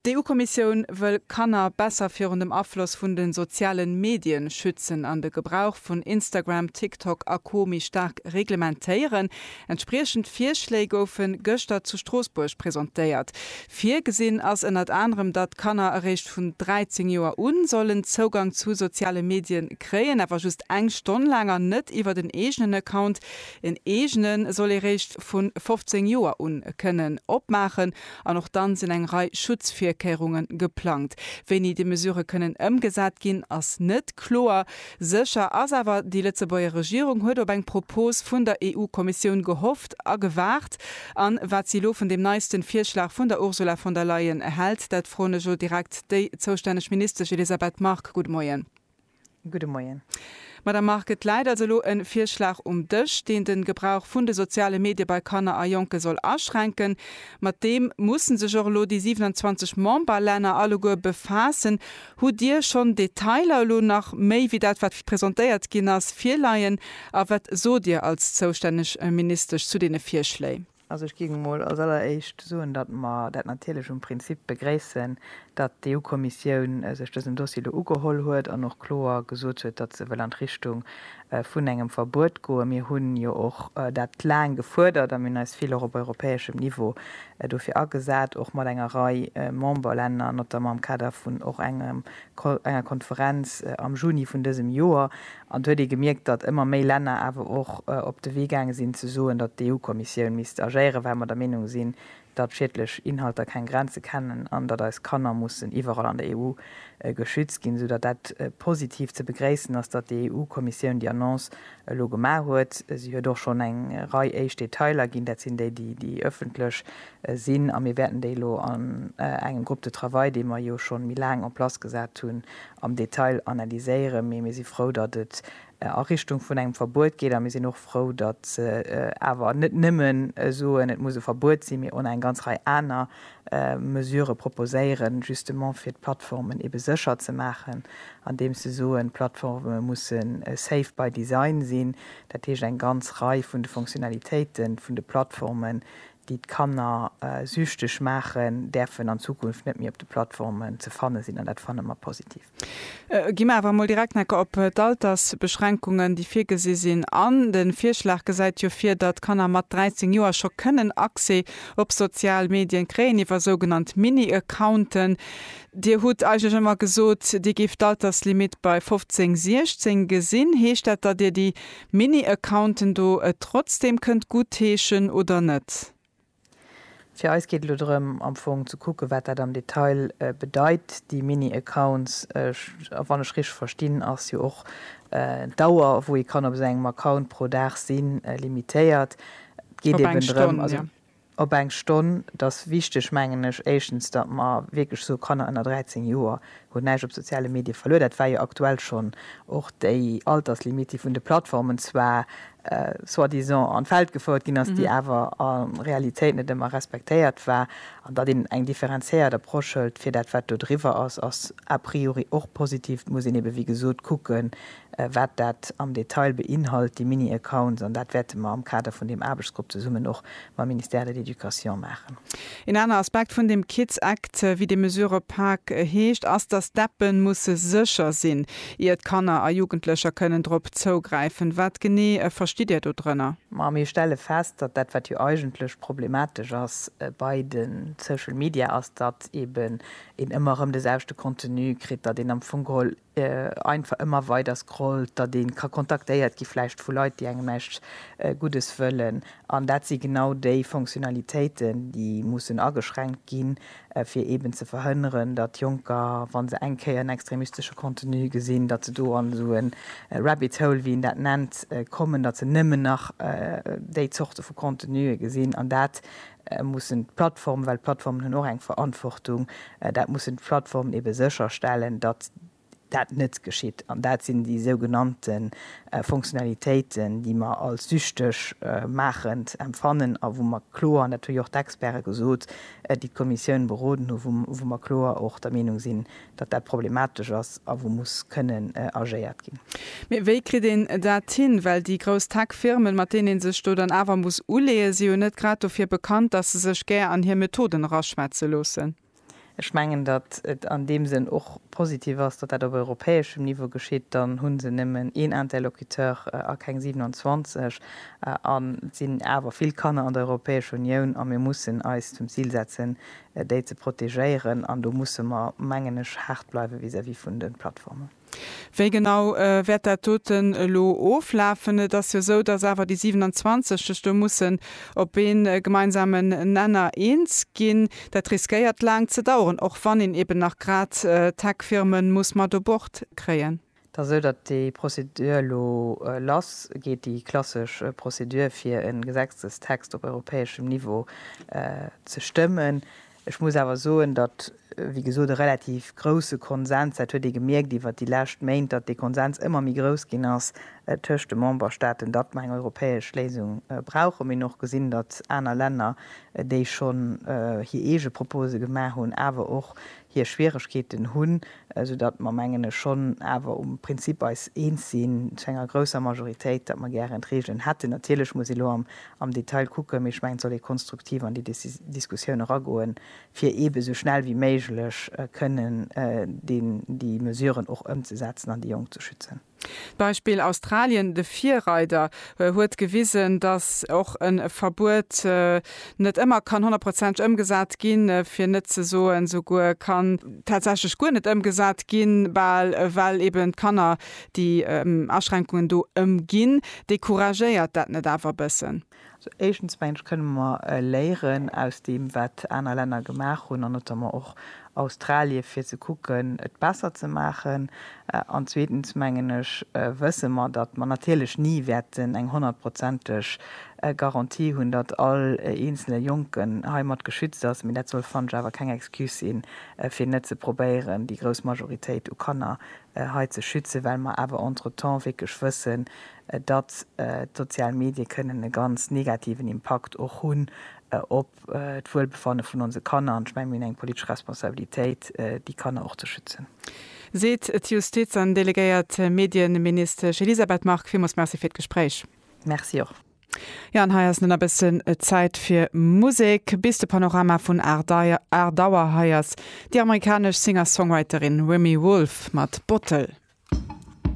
D'EU-Kommissioun wëll Kanner besser virun dem Afloss vun de soziale Medien schützen an de Gebrauch vun Instagram, TikTok a Co méi staark reglementéieren. Entspriechend Virschléi goufe gëschter zu Stroossbuerg presentéiert. Virgesinn ass ënnert anerem, datt Kanner eréischt vun 13 Joer u sollen Zougang zu soziale Medie kréien, awer just eng Stonn laang an net iwwert en eegenen Account. Een eegene soll ee réischt vu 15 Joer un kënnen opmaachen an och dann sinn eng Rei Schutzvirkéierunge geplangt. Wéini déi Mesurë kënnen ëmgesat ginn, ass net kloer. Sécher ass awer, déi Lëtzebuerger Regierung huet op eng Propos vun der EU-Kommissioun gehofft a gewaart. An wat si elo vun deem neisten Virschlag vun der Ursula von der Leyen hält, dat froen ech elo direkt déi zoustänneg Ministesch Elisabeth Margue. Gudde Moien. Gudde Moien. Madame Margue, et läit also elo e Virschlag um Dësch, deen de Gebrauch vun de soziale Medie bei Kanner a Jonke soll aschränken. Mat deem musse sech och elo déi 27 Memberlänner alleguer befaassen. Hutt Dir schonn Detailer, elo nach méi wéi dat, wat presentéiert ginn ass, virleien a wat sot Dir als zoustänneg Ministesch zu deene Virschléi? Also ech géing emol als alleréischt soen, datt mer dat natierlech um Prinzip begréissen, datt d'EU-Kommissioun sech dësem Dossier elo ugeholl huet an och kloer gesot huet, datt se wëll an d'Richtung vun engem Verbuet goen. Mir hu jo och dat laang gefuerdert a mir hunn eis vill och op europäeschem Niveau dofir agesat, och mat enger Rei Memberlänner, notamment am Kader vun och engem enger Konferenz am Juni vun dësem Joer, an et huet ee gemierkt, datt ëmmer méi Länner awer och op de Wee gaange sinn ze soen, datt d'EU-Kommissioun misst agéieren, well mer der Meenung sinn, datt schiedlech Inhalter keng Grenze kennen an datt eis Kanner mussen iwwerall an der EU geschützt ginn, esou datt dat positiv ze begréissen ass, datt déi EU-Kommissioun déi Annonce elo gemaach huet. Si huet och schonn eng Rei éischt Detailer ginn, dat sinn déi, déi ëffentlech sinn a mir wäerten déi elo an engem Groupe de travail, dee mer jo schonn méi laang en place gesat hunn, am Detail analyséieren. Mee mir si frou, datt et a Richtung vun engem Verbuet geet a mir sinn och frou, datt se awer net nëmme soen, et muss e Verbuet sinn, mee och nach eng ganz Rei aner Mesurë proposéieren, justement fir d'Plattformen ebe sécher ze maachen, andeems se soen, d'Plattforme mussen safe by design sinn. Dat heescht, eng ganz Rei vun de Fonctionnalitéiten vun de Plattformen, déi d'Kanner süchteg maachen, däerfen an Zukunft net méi op de Plattformen ze fanne sinn, an dat fanne mer positiv. Gi mer awer emol direkt necker op d'Altersbeschränkungen, déi virgesi sinn an de Virschlag gesäit jo vir, datt Kanner mat 13 Joer scho kënnen Accès op sozial Medien kréien iwwer sougenannt Mini-Accounten. Dir hutt eigentlech ëmmer gesot, Dir géift d'Alterslimitt bei 15, 16 gesinn. Heescht dat, datt Dir déi Mini Accounten do et trotzdem kënnt guttheeschen oder net? Fir eis geet elo drëm am Fong ze kucken, wat dat am Detail bedeit, déi Mini Accounts. A wann ech richteg verstinn, ass jo och d'Dauer, wou ee kann op esou engem Account pro Dag sinn, limitéiert. Et geet eben drëm, also op eng Stonn. Et ass wichteg, mengen ech, éischtens, datt mer wierklech soe Kanner ënner 13 Joer hunn näischt op soziale Medie verluer. Dat war jo aktuell schonn och déi Alterslimit, déi vun de Plattformen zwar soi-disant an d'Welt gefouert ginn ass, déi awer a Realitéit net ëmmer respektéiert war. An datt een eng differenziéiert Approche hëlt fir dat, wat do driwwer ass, ass a priori och positiv. Et muss een eebe wéi gesot kucken, Wat dat am Detail beinhalt, déi Mini-Accounts, an dat wäerte mer am Kader vun deem Aarbechtsgrupp zesummen och mam Ministère de l'Education maachen. Een aner Aspekt vun deem Kids Act, wéi déi Mesure op Pâques heescht, ass, datt d'Appe musse sécher sinn, ier d'Kanner a Jugendlecher kënnen drop zougräifen. Wat genee verstitt Dir do drënner? Ma mir stelle fest, datt dat, wat jo eigentlech problematesch ass bei de Social Media, ass, datt eeben een ëmmer erëm de selwechte Contenu kritt, datt een am Fong geholl einfach ëmmer weider scrollt, datt ee ka kontaktéiert gi vläicht vu Leit, déi engem näischt Guddes wëllen. An dat si genau déi Fonctionnalitéiten, déi mussen ageschränkt ginn, fir eeben ze verhënneren, datt Jonker, wa se eng Kéier en extremistesche Contenu gesinn, datt se do an esou e Rabbit Hole, wéi een dat nennt, kommen, datt se nëmmen nach déi Zorte vu Contenue gesinn. An dat mussen d'Plattformen, well d'Plattformen hunn och eng Verantwortung, dat mussen d'Plattformen ebe sécherstellen, datt dat net geschitt. An dat sinn déi sougenannte Fonctionnalitéiten, déi mer als süchteg maachend empfannen a wou mer kloer, an dat hu jo och d'Experte gesot, déi d'Kommissioun beroden hunn, wou mer kloer och der Meenung sinn, datt dat problematesch ass a wou muss kënnen agéiert ginn. Mee wéi kritt een dat hin? Well déi grouss Tech-Firmen, mat deenen ee sech do dann awer muss uleeën, si jo net grad dofir bekannt, datt se sech gär an hir Methoden eraschwätze loossen. Ech mengen, datt et an deem Sënn och positiv ass, datt dat op europäeschem Niveau geschitt. Dann hu se nëmmen een Interlocuteur a keng 27 an et sinn awer vill Kanner an der Europäescher Unioun a mir mussen eis zum Zil setzen, déi ze protegéieren, an do musse mer, mengen ech, haart bleiwe vis-à-vis vun de Plattformen. Wéi genau wäert dat doten elo oflafen? Et ass jo esou, dass awer déi 27 sech do mussen op ee gemeinsamen Nenner eens ginn. Dat riskéiert laang ze daueren, och wann een eeben nach grad d'Tech-Firme muss mat u Bord kréien. Et ass esou, datt déi Prozedur elo lass geet, déi klassesch Prozedur, fir e Gesetzestext op europäeschem Niveau ze stëmmen. Ech muss awer soen, datt, wéi gesot, e relativ grousse Konsens, dat huet ee gemierkt iwwert déi lescht Méint, datt dee Konsens ëmmer méi grouss ginn ass tëscht de Memberstaaten, datt mer eng europäesch Léisung brauchen. Mir hunn och gesinn, datt aner Länner, déi schonn hir eege Propose gemaach hunn, awer och hir Schwieregkeeten hunn, esou datt mer, mengen ech, schonn awer um Prinzip eis eens sinn, zu enger grousser Majoritéit, datt mer gären d'Regeln hätten. Natierlech muss ee lo am Detail kucken, mee ech mengen, et soll ee konstruktiv an déi Diskussioun eragoen, fir eebe esou schnell wéi méiglech kënnen déi Mesuren och ëmzesetzen an déi Jonk ze schützen. D'Beispill Australien, de Virreider, huet gewisen, datt och e Verbuet net ëmmer kann honnertprozenteg ëmgesat ginn, fir net ze soen, souguer kann tatsächlech guer net ëmgesat ginn, bal well eben d'Kanner déi Aschränkungen do ëmginn. Decouragéiert dat net awer e bëssen? Éischtens, meng ech, kënne mer léieren aus deem, wat aner Länner gemaach hunn, an notamment och Australie, fir ze kucken, et besser ze maachen. An zweetens, mengen ech, wësse mer, datt mer natierlech ni wäerten eng honnertprozenteg Garantie hunn, datt all eenzele Jonken heimat geschützt ass. Mee dat soll, fannen ech, awer keng Excuse sinn, fir net ze probéieren, déi grouss Majoritéit u Kanner hei ze schützen, well mer awer entretemps wierklech wëssen, datt d'sozial Medie kënnen e ganz negativen Impakt och hunn op d'Wuelbefanne vun onse Kanner. An ech menge mir hunn eng politesch Responsabilitéit, déi Kanner och ze schützen. Seet d'Justiz an delegéiert Medieministesch Elisabeth Margue. Villmools Merci fir d'Gespréich. Merci och. Jo, an hei ass nun e bëssen Zäit fir Musek. Bis de Panorama vun 8 Auer, hei ass déi amerikanesch Singer-Songwriterin Remi Wolf mat Bottle.